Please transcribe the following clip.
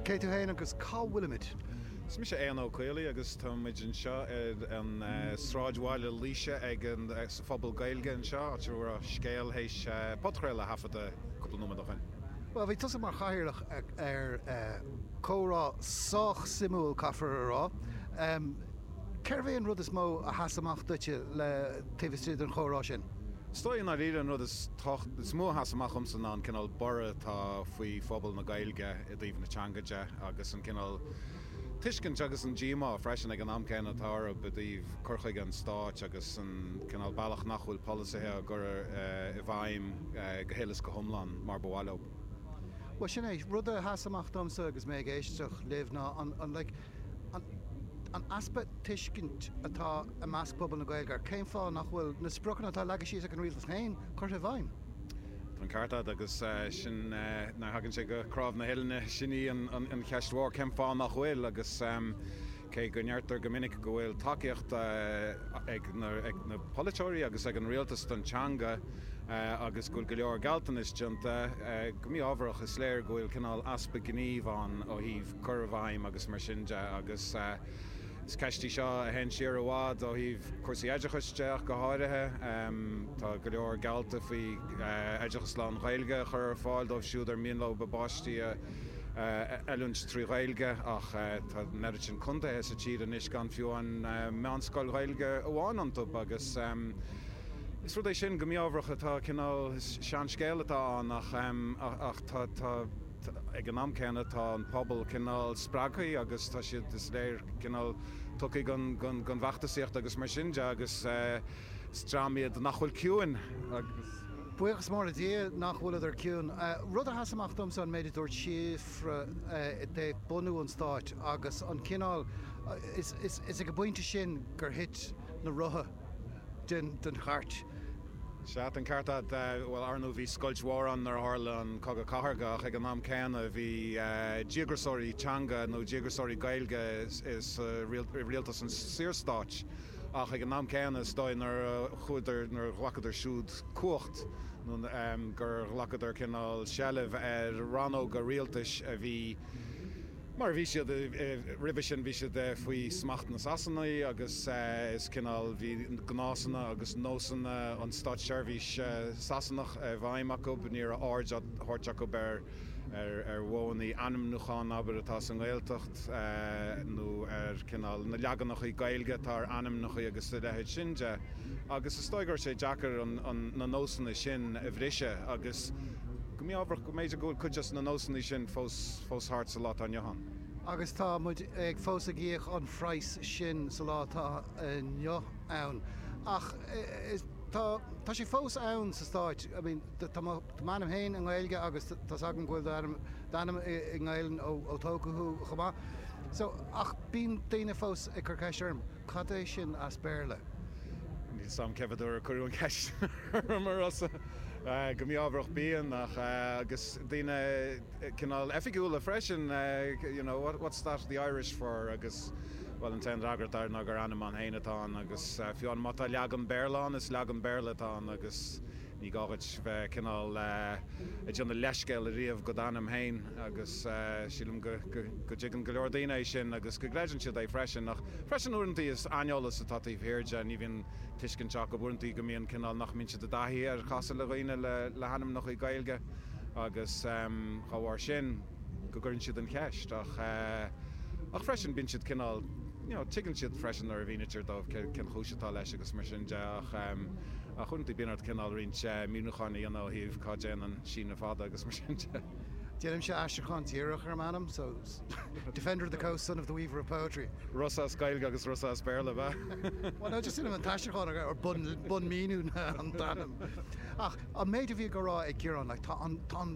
Cé tú fhéin agus cá bhfuilimid? Is mise Éanna Ó Caollaí agus tá muid anseo ar an Sráidbhaile Laoise ag an, sa Phuball Gaeilge anseo, áit a raibh Scéal théis podchraoladh a thaifeadadh cúpla nóiméad ó shin. Bhuel, bhí tusa mar chathaoirleach ar chomhrá sách suimiúil caithfear a rá. Cérbh é an rud is mó a sheas amach duitse taobh istigh den chomhrá sin? Is dóigh i ndáiríre an rud is tábhachtaí, is mó a sheas amach dhomsa ná an cineál borradh atá faoi phobal na Gaeilge i dtaobh na teanga de agus an cineál tuiscint agus an díomá freisin ag an am céanna atá orthu i dtaobh cur chuige an Stáit agus an cineál bealach nach bhfuil polasaithe á gcur i bhfeidhm go huile is go hiomlán mar ba mhaith leo. Bhuel, sin é rud a sheas amach domsa agus mé ag éisteacht libh ná an, like, an easpa tuiscint atá i measc phobal na Gaeilge ar cén fáth nach bhfuil na spriocanna atá leagtha síos ag an rialtas féin curtha i bhfeidhm. Tá an ceart agat agus sin nuair a thagann sé go cnámh na huillinne, sin í an cheist mhór, cén fáth nach bhfuil agus cé go ndeirtear go minic go bhfuil tacaíocht ag na polaiteoirí agus ag an rialtas don teanga agus go bhfuil go leor gealltanais déanta, go mí-ámharach is léir go bhfuil cineál easpa gnímh ann ó thaobh cur i bhfeidhm agus mar sin de agus is ceist í seo a théann siar i bhfad ó thaobh cúrsaí oideachais de ach go háirithe. Tá go leor geallta faoi oideachas lán-Ghaeilge a chur ar fáil dóibh siúd ar mian leo a bpáistí a oiliúint trí Ghaeilge ach tá an oiread sin contaetha sa tír anois gan fiú an mheánscoil Ghaeilge amháin iontu agus is rud é sin go mí-ámharach atá cineál seanscéal atá ann ach tá Ag an am céanna tá an pobal cineál spreagtha agus tá siad, is léir, cineál tugtha don bhfeachtasaíocht agus mar sin de agus is dream iad nach bhfuil ciúin agus. buíochas mór le Dia nach bhfuileadar ciúin. Rud a sheas amach domsa an méid a dúirt Síofra i dtaobh bunú an stáit agus an cineál, is ag an bpointe sin gur thit na rotha, den chairt. Sea, den chairt, bhuel, ar ndóigh bhí scoilt mhór ann nuair a tharla an Cogadh Cathartha ach ag an am céanna bhí díograsóirí teanga nó díograsóirí Gaeilge i rialtas an Saorstáit ach ag an am céanna is dóigh nuair a chuadar, nuair a ghlacadar siúd cumhacht nó gur ghlacadar cineál seilbh ar rannóga rialtais a bhí. Mar a bhí siad roimhe sin bhí siad faoi smacht na Sasanaigh agus is cineál bhí gnásanna agus nósanna an státseirbhís Sasanach i bhfeidhm acu, ní raibh aird á thabhairt acu ar mhodhanna ainmniúcháin abair atá sa nGaeltacht nó ar cineál na leaganacha Gaeilge atá ar ainmneacha agus a leithéid sin de agus is dóigh go raibh sé deacair na nósanna sin a bhriseadh agus Go mí-ámharach go mb'fhéidir go bhfuil cuid des na nósanna sin fós thart sa lá atá inniu ann. Agus tá muid ag fós ag íoc an phraghais sin sa lá atá inniu ann. Ach tá sé fós ann sa Stáit. I mean, tá m'ainm féin i nGaeilge agus tá s'agam go bhfuil d'ainm i nGaelainn ó tógadh thú chomh maith. So, ach bíonn daoine fós ag cur ceiste orm. Cad é sin as Béarla? Níl 's a'm cé mhéad uair a cuireadh an cheist orm a Rossa, go mí-ámharach bíonn ach, agus daoine cineál oifigiúla freisin, you know, what, what's that the Irish for agus, bhuel an t-aon fhreagra atá air ná gur ainm ann féin atá ann agus fiú má tá leagan Béarla ann, is leagan Béarla atá ann agus, Ní gá dhuit bheith cineál ag déanamh leithscéal a riamh do d'ainm féin agus sílim go dtuigeann go leor daoine é sin agus go gcreideann siad é freisin ach freisin uaireantaí is aineolas atá taobh thiar de, ní bhíonn tuiscint acu, uaireantaí go mbíonn cineál nach mbíonn siad i dtaithí ar chasadh le daoine le hainmneachaí Gaeilge agus dá bharr sin. go gcuireann siad an cheist ach ach freisin bíonn siad cineál you know tuigeann siad freisin nuair a mhínítear dóibh cén chúis atá leis agus mar sin de ach ach uaireanta bíonn ort cineál roinnt míniúcháin a dhéanamh ó thaobh cá dtéann an síneadh fada agus mar sin de. Déanaimse aistriúchán díreach ar m'ainm so Defender of the Coast, son of the Weaver of Poetry. Rossa as Gaeilge agus Rossa as Béarla, bheadh? Bhuel ná just déanaim an t-aistriúchán ar ar bun bun míniú an t-ainm ach an méid a bhíodh á rá ag Ciarán like tá an tá an